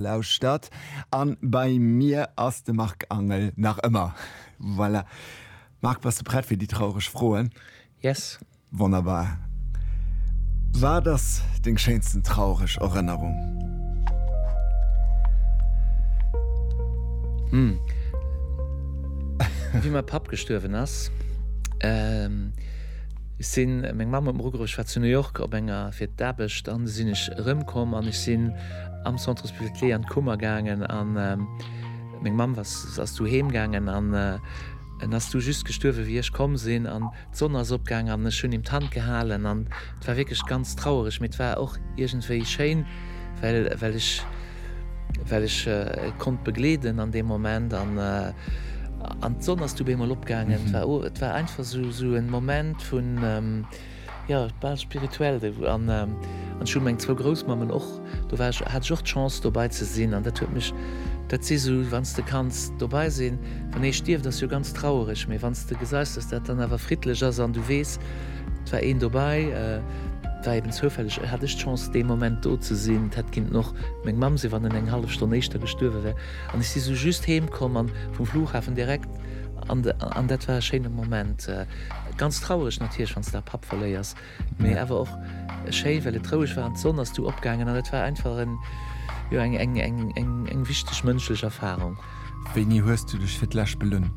Lauschtert an bei mir ass de Marc Angel nach ëmmer. Voilà. Marc, bass de prett fir déi traureg Froen? Yes. Wonnerbar. Wat ass deng schéinsten traureg Erënnerung? Hm. Wéi mäi Papp gestuerwen ass, ehm, sinn meng Mamm op Rugerich war zu New York op enger fir d'Aarbecht an du sinn ech erëmkomm an ech sinn, am Centre Hospitalier an d'Kummer gaangen an meng Mamm ass du heem gaangen an en ass du just gestuerwen wéi ech komm sinn an d'Sonn ass opgaangen an ech hunn him d'Hand gehalen an et war wierklech ganz trauereg, mee et war och iergendwéi schéin, well well ech well ech e konnt begleeden an deem Moment an an d'Sonn ass du bemol opgaangen, et war einfach esou esou e Moment vun. Jo, bal spirituell de Goût. An ech hu meng zwou Groussmammen och, do war ech, hat ech och d'Chance dobai ze sinn an dat huet mech, dat si sou, wann s de kanns dobai sinn, wann ee stierft ass jo ganz trauereg, mee wann s de geseis dass dat dann awer friddlech ass an du weess et war een dobai, war eben zoufälleg hat ech d'Chance dee Moment do ze sinn, et hätt kinnten och meng Mamm sinn wann en eng hallef Stonn éischter gestuerwe wär an ech si sou just heem komm an vum Flughafen direkt an dat war e schéine Moment. Ganz traureg natierlech wanns de da Papp verléiers, mee awer och schéi well et roueg war an d'Sonn ass du opgaangen an et war einfach en jo eng eng eng eng eng wichteg mënschlech Erfahrung. Wéini hues du dech fir d'lescht belunn?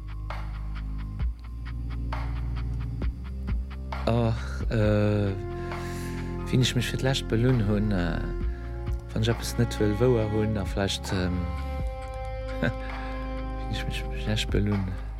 Ach euh, wéini ech mech fir d'lescht belunn hunn, wann ech eppes net wëll wouer hunn a vläicht, wéini ech mech fir d'lescht belunn.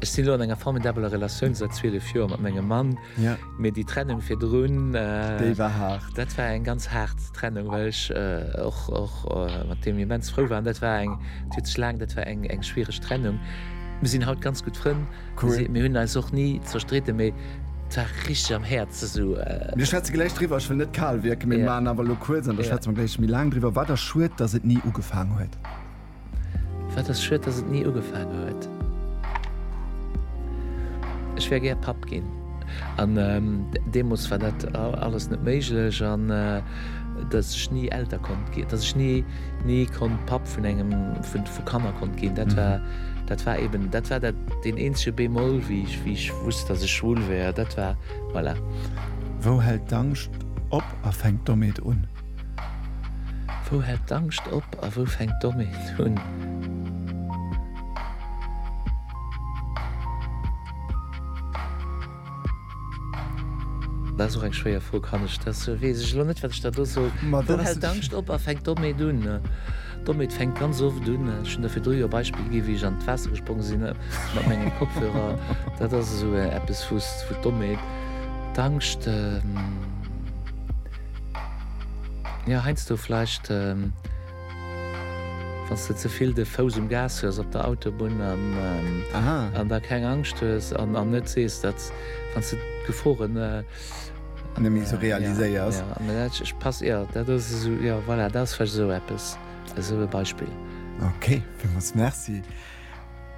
Ech sinn elo an enger formidabeler Relatioun säit 12 Joer mat mengem Mann. Ja. Mee déi Trennung virdrun, Déi war haart. dat war eng ganz haart Trennung, well ech och, och mat deem immens frou war. An dat war eng, dat huet sech laang, dat war eng, eng schwiereg Trennung. Mir sinn haut ganz gutt Frënn. Cool. Mir hunn eis och ni zerstritten, mee et war richteg am Häerz esou. Mir schwätze gläich driwwer. Ech wëll net kal wierken, mee mir maachen awer elo kuerz an da schwätze mer gläich méi laang driwwer. War da schued, dass et ni ugefaang huet. Wat ass schued dass et ni ugefaange huet. Ech wär gär Papp ginn an deemoos war dat alles net méiglech an dass ech ni Elter konnt ginn, dass ech ni ni konnt Papp vun engem vu Kanner konnt ginn. Dat war dat war eben dat war dat deen eenzege Bémol wéi ech wéi ech wusst dass ech schwul wär. Dat war voilà. Wou hält d'Angscht op a fänkt domat un? Wou hält d'Angscht op a wou fänkt d'Dommeet un? Dat ass och eng schwéier Fro. Kann ech dat soen? Weess ech elo net, wat ech da do soll. Wou hält d'Angscht op a fänkt d'Dommeet un? D'Dommeet fänkt ganz oft un. Ech hunn der virdru jo e Beispill gi wéi ech an d'Waasser gesprongen sinn mat menge Kopfhörer. Dat ass esou eppes, wou d'Dommeet d'Angscht. Jo heinsdo vleicht wanns de zevill de Fouss um Gas hues op der Autobunn an da keng Angscht hues an an net sees dat wanns de d'Geforen nemmi sou realiséiers. Ech pass jo dat ass esou jo voilà dat ass vleicht esou eppes esou e Beispill. Ok villmols merci.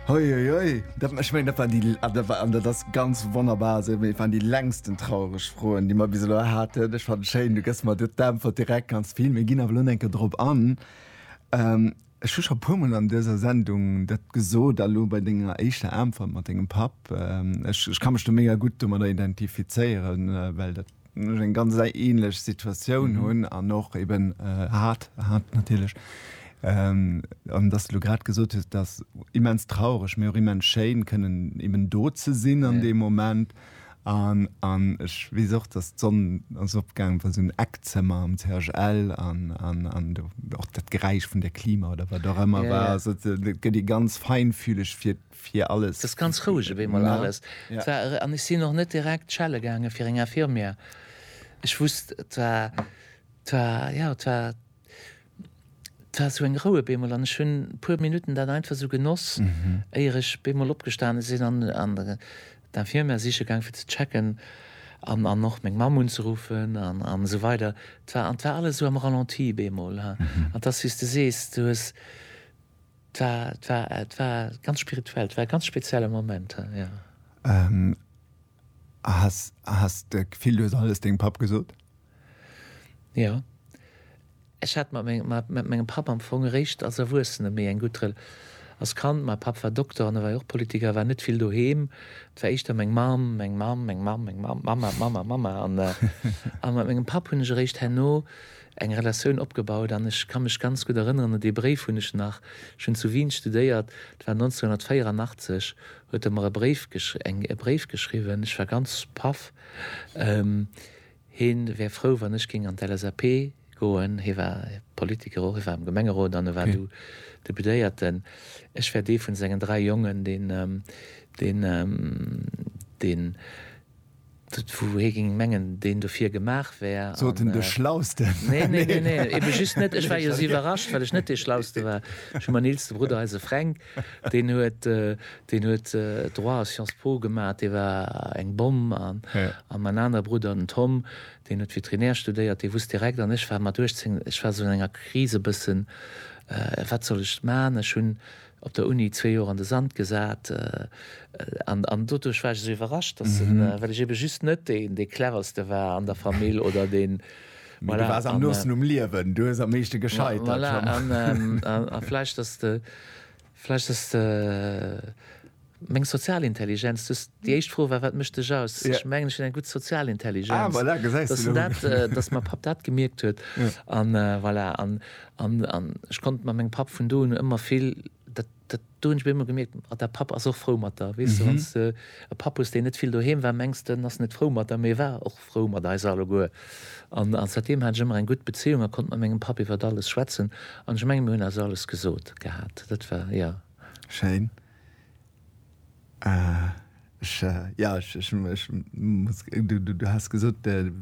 Uiuiui, dat war, ech mengen, dat war déi, ah, dat war, an dat ass ganz wonnerbar esou, mee et waren déi längsten traureg Froen, déi mer bis elo haten. Ech fannen schéin, du gëss mer do d'Äntwert direkt ganz vill. Mir ginn awer elo nach eng Kéier drop an. Ech hu scho e puer Mol an dëser Sendung dat gesot, a lo bei denger éischter Äntwert mat dengem Papp, ech, ech ka mech do mega gutt domadder identifizéieren, well dat, ech eng ganz ähnlech Situatioun mhm. hunn an och eben äh, hat hat natierlech ähm, an dass du grad gesot hast, dass immens traureg mir immens Schein können eben do ze sinn an ja. dem Moment an, an ich wie auch dass Sonne als Obgang von so ein Eckzimmer am CHL an, an, an auch das Geräusch von der Klima oder was auch immer ja, war ja. Also, die ganz feinfühlig für fir alles. T'ass ganz roueg op eemol alles. T'war, an ech sin och net direkt schelle gaangen fir eng Infirmière. Ech wusst, t'war, t'war, jo, t'war, t'war esou eng Rou op eemol an ech hun puer Minuten dat einfach esou genoss, éier ech op eemol opgestane sin an an d'Infirmière siche gaang fir ze checken an an och meng Mamm unzeruffen an an esou weider. T'war, an t'war alles esou am Ralenti op eemol, an t'ass wéi's de sees, du hues, 't war, 't war, 't war ganz spirituell, 't war e ganz spezielle Moment, jo. A has, a has de Gefill, du hues alles dengem Papp gesot? Jo. Ech hat mat mengem, mat, mat mengem Papp am Fong eréischt als Erwuessene méi eng gutt Re, als Kand, mäi Papp war Dokter an e war jo och Politiker, war net vill doheem. 't war éischter meng Mamm, meng Mamm, meng Mamm, meng Mamm, Mamma, Mamma, Mamma an, an mat mengem Papp hunn ech eréischt herno, eng Relatioun opgebaut an ech ka mech ganz gutt erënneren un dee Bréif, hunn ech nach, ech hunn zu Wien studéiert, et war 1984, huet e mer e Bréif gesch eng e Bréif geschriwwen, ech war ganz paff, hie wär frou wann ech géing an d'LSAP goen, hie war Politiker och, hie war am Gemengerot an e war du Deputéierten, ech wär dee vun sengen dräi Jongen, deen, deen, deen. Dat wou hee géing mengen deen dofir gemaach wär. Sot en de Schlausten? Nee, nee, nee, nee, eben just net. Ech war jo esou iwwerrascht, well ech net dee Schlauste war. Ech hu mäin eelste Brudder, eise Fränk, deen huet, deen huet Droit a Sciences Po gemaach, dee war eng Bomm. An an mäin anere Brudder, den Tom, deen huet Veterinär studéiert, dee wusst direkt. An ech war mat 18, ech war esou an enger Kris e bëssen, wat soll ech maachen? Ech hunn Op der Uni zwee Joer an de Sand gesat, an doduerch war ech esou iwwerrascht, dass se, well ech eben just net deen dee cleverste war an der Famill oder deen, Mee du waars am noosten um Liewen, du hues am meeschte gescheit, dat schon. Voilà, an vläicht dass de, vläicht dass de. Meng sozial Intelligenz, du hues déi éischt Fro war, wat mécht dech aus? Ech mengen, ech hunn eng gutt sozial Intelligenz. Dat ass dat, datt mäi Papp dat gemierkt huet. An voilà, an, an, an ech konnt mat mengem Papp vun do un ëmmer vill, dat, dat, do hunn ech bei him ëmmer gemierkt, ah, däi Papp ass och frou mat der. Weess de, wann s de e Papp hues, deen net vill doheem war, mengs de, en ass net frou mat der, mee e war och frou mat eis alleguer. An säitdeem hat ech ëmmer eng gutt Bezéiung a konnt mat mengem Papp iwwert alles schwätzen. An ech mengen, mir hunn eis alles gesot gehat. Dat war, jo. Schéin. Du has gesot dech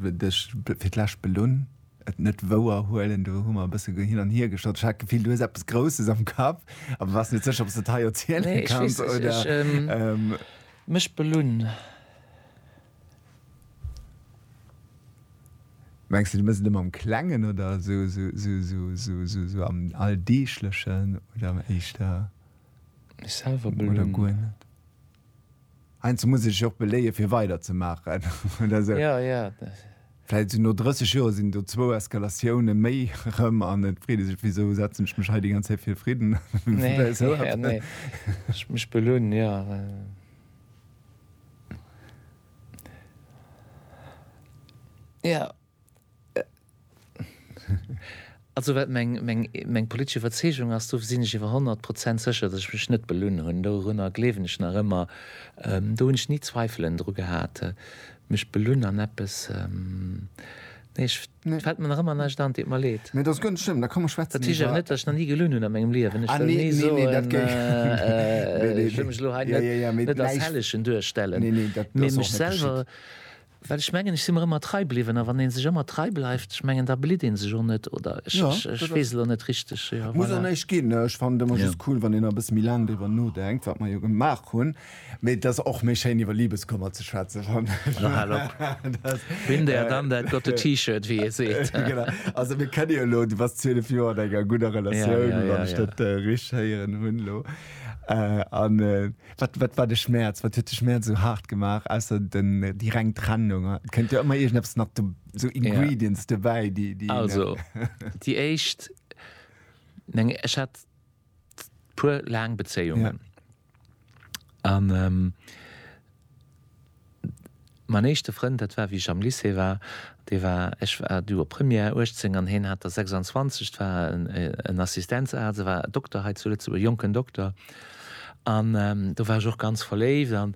fir d'lescht belunn, et net wouer huelen. Do hu mer e bësse hin an hier geschott. Ech hat d'Gefill du hues eppes Grousses am Kapp, awer war net sécher ob s de et hei erziele kanns oder. Mech belunn. Mengs de du mëss et ëmmer am Klengen oder sou am Alldeeglechen oder am éischter? Mech selwer belonen. Oder guer net. Heiansdo muss ee sech och beléien, fir weider ze maachen, oder sou. Ja, ja. Vläit sou no 30 Joer sinn do zwou Eskalatioune méi erëm an et freet ee sech, Wisou setzen ech mech hei déi ganz Zäit fir fridden? Ja, nee. Ech mech belonen, jo. Jo. Also wat meng politesch Iwwerzeegung ass, do sinn ech iwwer honnert Prozent sécher, datt ech mech net belunn hunn. Dorunner gleewen ech nach ëmmer. Do hunn ech ni Zweifelen dru gehat, mech belunn an eppes. Nee, ech, et fält mer nach ëmmer näischt an. Et deet mer leed. Nee, dat ass guer net schlëmm. Da komm mer schwätzen iwwer. Dat heescht awer net, datt ech nach ni gelunn hunn a mengem Liewen. Ech wëll ni soen. Ah, nee, dat géif. Ech wëll mech elo hei net als Hellegen duerstellen. Nee, nee, dat ass och net geschitt. Mee mech selwer, Well ech mengen, ech si mer ëmmer trei bliwwen. A wann ee sech ëmmer trei bleift, ech mengen, da blitt ee sech och net, oder? Ech, ech, ech weess elo net richteg. Jo, Muss och voilà. näischt ginn. Ech fannen et ëmmer just cool, wann een nach e bësse méi laang driwwer nodenkt, wat mer jo gemaach hunn. Mee et ass och méi schéin, iwwer Libeskummer ze schwätzen, fannen ech. No, hal op. Dat, Been there, done that, got the T-Shirt, wéi ee seet. Genau. Also, mir kenne jo elo, du bass 12 Joer an enger gudder Ja, Relatioun, ja, wann ja, ech ja. dat richteg héieren hunn elo. An, Wat, wat war de Schmäerz? Wat huet de Schmäerz esou haart gemaach, ausser den, déi reng Trennung? Et kënnt jo ëmmer iergendeppes nach do, esou Ingredients dobäi, déi, déi een. Also, déi éischt, meng, ech hat puer laang Bezéiungen. An, Mäin éischte Frënd, dat war wéi ech am Lycée war, dee war, ech war du op Première, 18 an heen hat der 26, et war en Assistenzarzt, e war Dokter hei zu Lëtzebuerg, jonken Dokter. An do war ech och ganz verléift an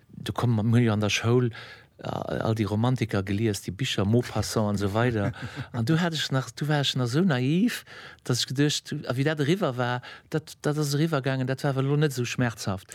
do komm, mir hunn jo an der Schoul all déi Romantiker gelies, déi Bicher, Maupassant an esou weider an do hat ech nach, do war ech nach esou naiv, datt ech geduecht, a wéi dat eriwwer war, dat, dat ass eriwwer gaangen, dat war awer elo net esou schmerzhaft.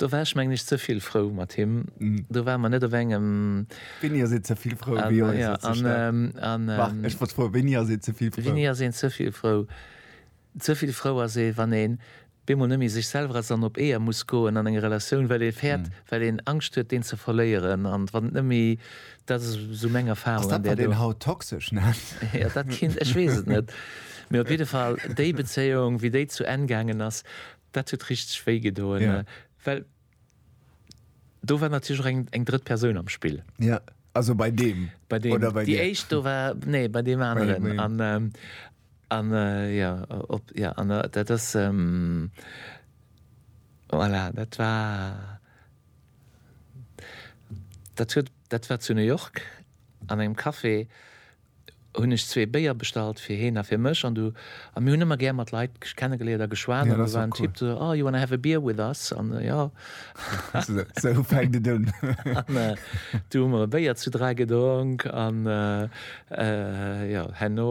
Do war ech mengen ech ze vill frou mat him. Do ware mer net op engem. Wéini ass een ze vill frou? Wéi ass een ze staark? Marc, ech wollt froen, wéini ass een ze vill frou? Wéini ass een ze vill frou? Ze vill frou ass ee wann een bemol net méi sech selwer ass an op Eeër muss goen an enger Relatioun, well ee fäert, well een Angscht huet deen ze verléieren an wann et net méi, dat ass esou meng Erfarung. Ass dat wat een haut toxesch nennt? Jo, dat kinnt, ech weess et net, mee op jidde Fall déi Bezéiung wéi déi zu Enn gaangen ass, Dat huet richteg wéi gedoen, well do war natierlech och eng eng drëtt Persoun am Spill. Ja, also bei deem bei deem oder bei déi dir? éischt do war, nee bei deem Bei aneren deem. an ähm, an äh, jo op jo an äh, dat ass ähm, voilà dat war dat huet dat war zu New York an engem Café. hunn ech zwee Béier bestallt fir heen a fir mech an du a mir hunn ëmmer gär mat Leit kennegeléiert a geschwat an do war en Typ do so, oh, you wanna have a beer with us? An jo, esou fänkt et un. An du hu mer e Béier zu dräi gedronk an jo, herno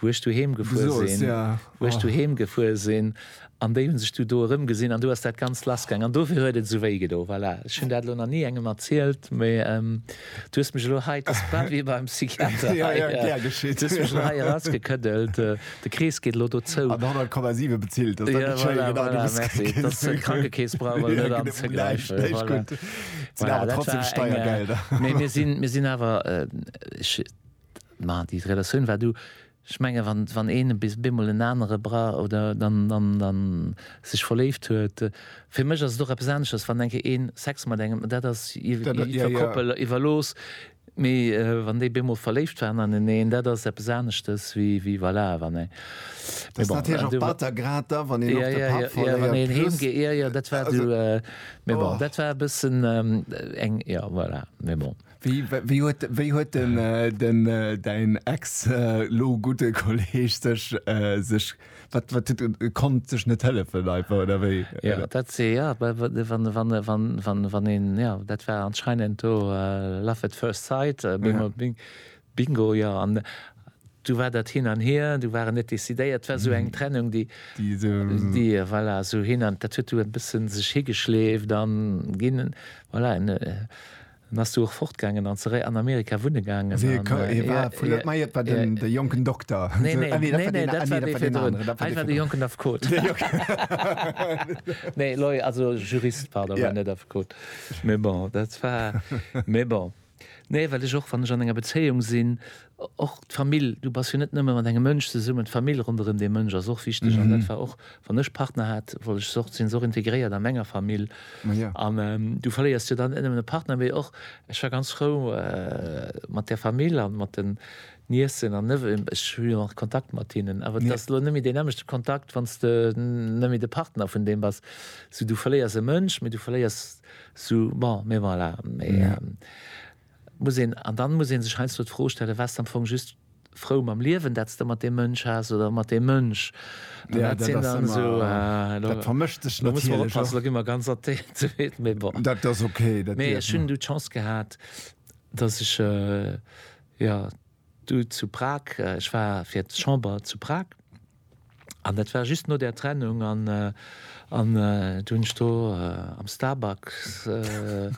wou ech doheem gefuer sinn, wou ech doheem gefuer sinn, an déi hunn sech du do erëmgesinn an du ass dat Ganzt lassgaang an dofir huet et esou wéi gedo. Voilà, ech hunn dat elo nach ni engem erzielt, mee du hues mech elo hei, et ass bal wéi beim Psychiater hei, du hues mech elo hei erausgekëddelt, de Krees geet elo do zou. An 100,7 bezilt, dat ass dann net schéin, genau, du hues et ginn. Dass de Krankekeess brauch elo net anzegräifen. Näischt, näischt gutt. Et sinn awer trotzdem Steiergelder. Voilà, dat war eng, mee mir sinn, mir sinn awer, ech, Ma déi Relatioun war do. Ech menge wann een bemol en anere bra oder dann dann sech verléift huet, fir mech ass et och eppes aneschters wann enke een Sex mat engem, dat ass iwwer Koppel iwwerlooss, mee wann déi bemol verléift waren aneneen, dat ass eppes aneschtes wéi voilà wann ee. Dat ass natierlech och batter, grad da wann een och de Papp verléiert. Wann een heem geet, jo jo dat war do, mee bon dat war e bëssen eng, jo voilà, mee bon. Wéi huet wéi huet den den däin ex lo gudde Kolleg sech sech wat wat huet e konnt sech net hëllefen einfach oder wéi? Jo dat se jo wa wa wann wann wann wann wann een jo dat war anscheinend do love at first sight bing bing bingo jo an du war dat hin an hier du waren net décidéiert et war esou eng Trennung déi déi esou déi voilà esou hin an dat huet du e bëssen sech higeschleeft an ginn voilà en En ass du och fortgaangen an zeréi an Amerika wunne gaangen. Wéi e ka, ee war vun der, mei et war den, de jonken Dokter. Nee, nee, ah nee, dat war deen, ah nee, dat war deen aneren, dat war dee virdrun. Hei war de jonken Affekot. De jonken. Nee, Lawyer, also Jurist, pardon, war net Affekot. Mee bon, dat war, mee bon. Nee, well ech och, wann ech an enger Bezéiung sinn, Och d'Famill, du bass jo net nëmme mat engem Mënsch zesummen, d'Famill ronderëm dee Mënsch ass och wichteg an dat war och, wann ech Partner hat, wollt ech se och, sinn se och integréiert a menger Famill an du verléiers jo dann net nëmmen e Partner, mee och, ech war ganz frou mat der Famill an mat den Niécen an Neveuxen, ech hu jo nach Kontakt mat hinnen, awer et ass elo net méi deen nämmlechte Kontakt, wann s de net méi de Partner vun deem bass, sou du verléiers e Mënsch, mee du verléiers sou, bon, mee voilà, mee. Muss een, an dann muss ee sech heiansdo d'Fro stellen, Waars de am Fong just frou mam Liewen, dat s de mat deem Mënsch has oder mat deem Mënsch? An dat sinn dann esou, elo muss mer oppassen, elo gi mer ganz artikuléiert, mee bon. Mee ech hunn du d'Chance gehat, datt ech, jo, du zu Prag, ech war fir d'Chamber zu Prag, An dat war just no där Trennung an do hunn ech do am Starbucks, hunn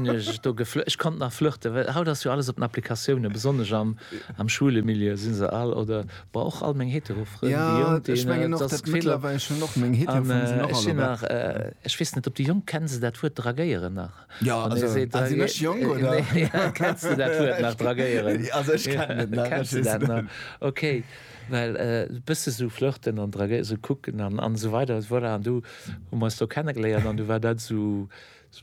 ech do geflirtet, ech konnt nach flirten, well haut ass jo alles op den Applikatiounen, besonnesch am schwule Milieu si se all oder bon och all meng hetero Frënn, déi Jonk, déi hunn dat ass d'Gefill. An ech sinn nach, ech weess net, ob déi Jonk, kenne se dat Wuert draguéieren nach? Ja, also, se si mech jong oder kennst du dat Wuert nach dragéieren? Also ech kennen et nach. Kennst du dat nach? Okay, well e bësse sou flirten an dragéieren, sou kucken an an esou weider, voilà, an du hu mer eis do kenne geléiert an du war dat sou,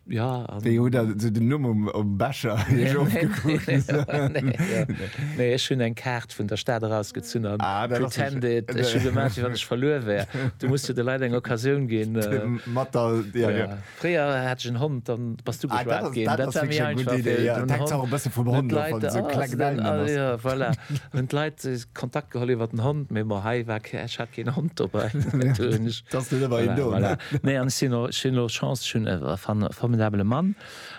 ja. Wéi hutt Der sou den Numm um um Becher iech ofgekuckt? Nee, ech hunn eng Kaart vun der Stad erausgezunn an pretended, ech hu gemaach wéi wann ech verluer wär. Du muss jo de Leit eng Occasioun ginn. Mat der, ja. Fréier hat ech en Hond, dann bass du geschwat gin. Dat war méi einfach fir hunn d'Leit Kontakt geholl iwwer den Hond, mee bon hei war kee, ech hat keen Hond dobäi. Nee an ech sinn och, ech hunn och Chance, ech hunn e formidabele Mann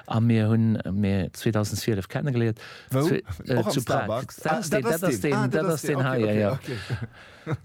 a mir hunn mir 2012 kennengeléiert zu Prag. Dat ass deen, dat ass deen hei, jo jo.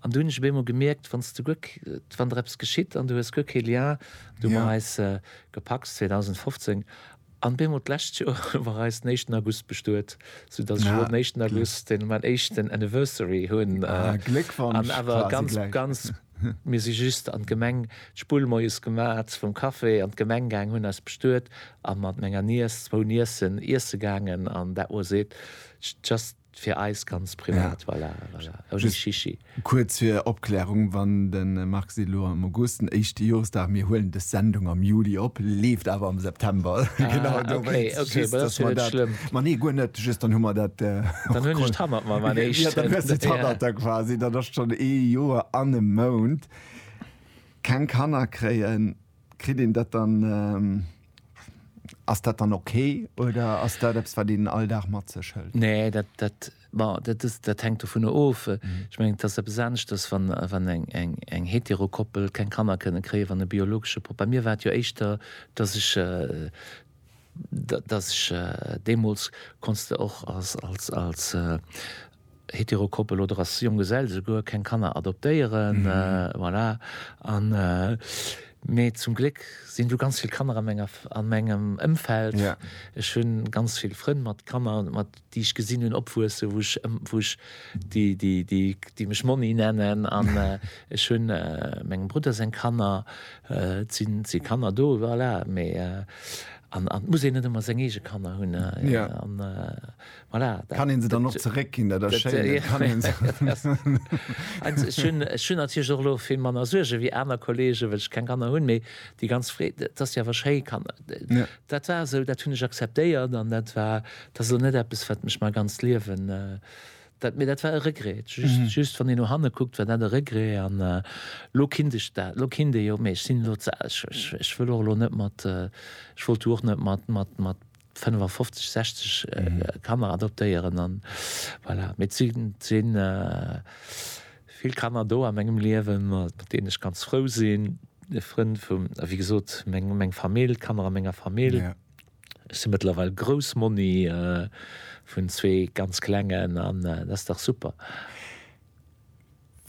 An du hunn ech op eemol gemierkt, wann s du guer, wann der eppes geschitt an du hues guer kee Lien du mat eis gepacks, 2015, an op eemol d'lescht Joer war eis den éischten August bestuet, sou datt ech elo den éischten August den mäin éischten Anniversary hunn an awer ganz, ganz, mir si just an d'Gemeng d'Spull moies gemat vum Café, an d'Gemeng gaangen, hunn eis bestuet a mat menger Niess zwou Niessen iesse gaangen an dat moies eet just. Fir eis ganz privat, voilà, voilà. Ohne Shishi. Kuerz fir Opklärung, Wann de Marc seet elo am August den éischte Joresdag, mir huelen des Sendung am Juli op, leeft awer am September. Genau Ah, okay, dowéinst, okay, just ma dat ass dass jo mer net dat, schlëmm. ma nee, guer net, just dann hu mer dat Dann hunn ech och. d'Hannert mam Ja, dann hues du eréischten. d'Hannert da quasi, dann ass schonn ee Joer an e Mount keng Kanner kréien, kritt een dat dann? Ass dat dann ok oder ass dat eppes wat een all Dag mat sech hëlt? Nee, dat, dat, bon, dat ass, dat hänkt dovunner of. Ech mengen et ass eppes aneschters wann, wann eng, eng, eng hetero Koppel keng Kanner kënne kréien, wann e biologesche Pop. Bei mir war et jo éischter, datt ech, datt ech deemools, konns de och als, als, als, Heterokoppel oder als Jonggesell souguer keng Kanner adoptéieren, voilà. An, mee zum Gléck sinn do ganz vill Kanner a menger, a mengem Ëmfeld. Ech hu ganz vill Frënn mat Kanner, mat, déi ech gesinn hunn opwuesse, wou ech, wou ech, déi, déi, déi, déi mech Monni nennen. An ech hu mengem Brudder seng Kanner, et sinn, et si Kanner do, voilà. Mee, an, an et muss een net ëmmer seng eege Kanner hunn, an. Voilà, dat, kann een se dann och zeréckginn, dat ass schéin. Ech hunn natierlech och elo vill manner Suerge wéi aner Kollegen, well ech keng Kanner hunn. Mee déi ganz Freed, et ass jo awer schéi Kanner. Dat war esou, dat hunn ech akzeptéiert an dat war, dat ass elo net eppes, wat mech mäi ganzt Liewen, dat, mee dat war e Regret. Just wann een no hanne kuckt, war dat e Regret an elo kinnt ech dat, elo kinnt ee jo. Mee ech sinn elo ze al, ech wëll och elo net mat, ech wollt du och net mat, mat, mat. 55, 60 Kanner adoptéieren an voilà. Mee et sinn, et sinn vill Kanner do a mengem Liewen, mat deenen ech ganz frou sinn, Frënn vum, wéi gesot, meng, meng Famill, d'Kanner a menger Famill. Ja. Ech si mëttlerweil Groussmonni vun zwee ganz Klengen an dat ass dach super.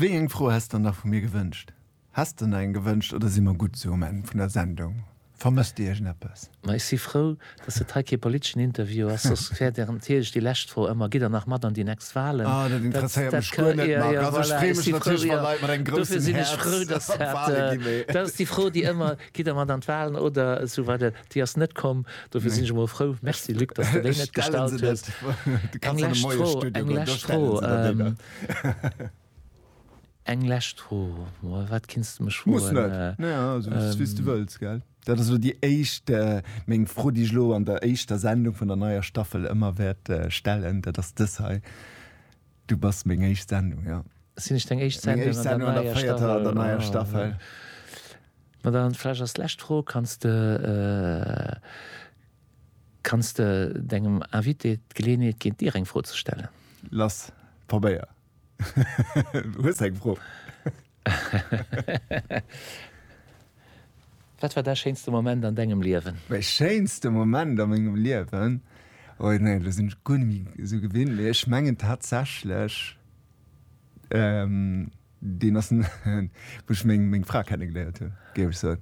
Wéi eng Fro häss s der nach vu mir gewënscht? Häss de eng gewënscht oder si mer gutt sou um Enn vun der Sendung? Vermësst Dir iergendeppes? Ma ech si frou, dass et hei kee politeschen Interview ass, soss wär Dir natierlech déi lescht Fro ëmmer, Gitt Der nach mat an déi nächst Walen? Ah, dat interesséiert mech guer net, Marc. Also ech freeë mech natierlech, wa Leit mat engem groussen Häerz an d'Wale gi, mee. Dat ass déi Fro, déi ëmmer, Gitt Der mat an d'Walen oder esou weider? Déi ass net komm, dofir sinn ech emol frou. Merci, Luc, dass de déi net gestallt hues. Eng lescht Fro, eng lescht Fro. Eng lescht Fro, Mol, wat kinns de mech Muss froen? net. Naja, also et ass wéi s du wëlls, gell? Dat ass elo déi éischt, meng Fro, déi ech elo an der éischter Sendung vun der neier Staffel ëmmer wäert stellen. Dat ass dës hei, Du bass meng éischt Sendung, jo. Sinn ech deng éischt Meng éischt Sendung an der Sendung an der véierter, der neier Staffel. véierter, der neier Staffel. Ma dann vläch als lescht Fro, Kanns de, kanns de dengem Invité d'Geleeënheet ginn, dir eng Fro ze stellen? Lass probéier. Hues eng Fro? Wat war däi schéinste Moment an dengem Liewen? Mäi schéinste Moment a mengem Liewen? Oh jo, nee, elo sinn ech guer net méi esou gewinnt, mee ech mengen tatsächlech, deen ass, wou ech meng Fra kenne geléiert hunn, géif ech soen.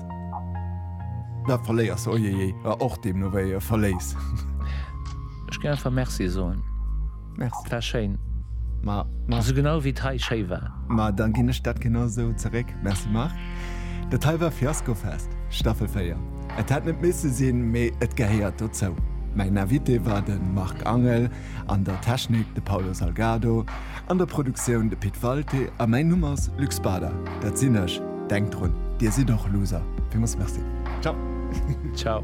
Da verléiers se, ojejej, a och deemno wéi e verléis. Ech géing einfach Merci soen. Merci. War schéin. Ma, ma. Esou genau wéi et hei schéi war. Ma dann ginn ech dat genau esou zeréck. Merci Marc. Dat hei war Fiaskofest, Staffel 4. Et hätt net misse sinn, mee et gehéiert dozou. Mäin Invité war de Marc Angel. An der Technik de Paulo Salgado, an der Produktioun de Pit Walté a mäin Numm ass Luc Spada, dat sinn ech. Denkt drun, Dir sidd och Loser! Villmools Merci. Ciao. Ciao.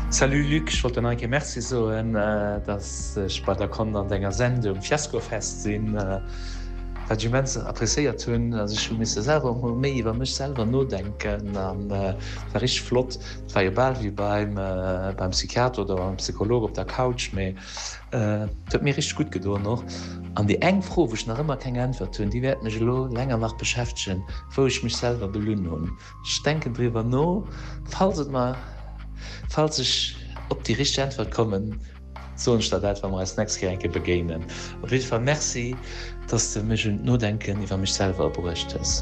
Salut Luc, ech wollt der nach eng Kéier Merci soen, dass ech bei der konnt an denger Sendung Fiaskofest sinn, wat ech immens appréciéiert hunn. Also ech hu misse selwer och mol méi iwwer mech selwer nodenken an war richteg flott. Et war jo bal wéi beim Psychiater oder beim Psycholog op der Couch, mee et huet mir richteg gutt gedoen och. An déi eng Fro, wou ech nach ëmmer keng Äntwert hunn, déi wäert mech elo länger nach beschäftegen, wou ech mech selwer belunn hunn. Ech denken driwwer no, falls et mer, falls ech op déi richteg Äntwert kommen, soen ech der dat, wa mer eis d'nächst Kéier eng Kéier begéinen. Op jidde Fall Merci, dass de mech un d'Nodenken iwwer mech selwer bruecht hues.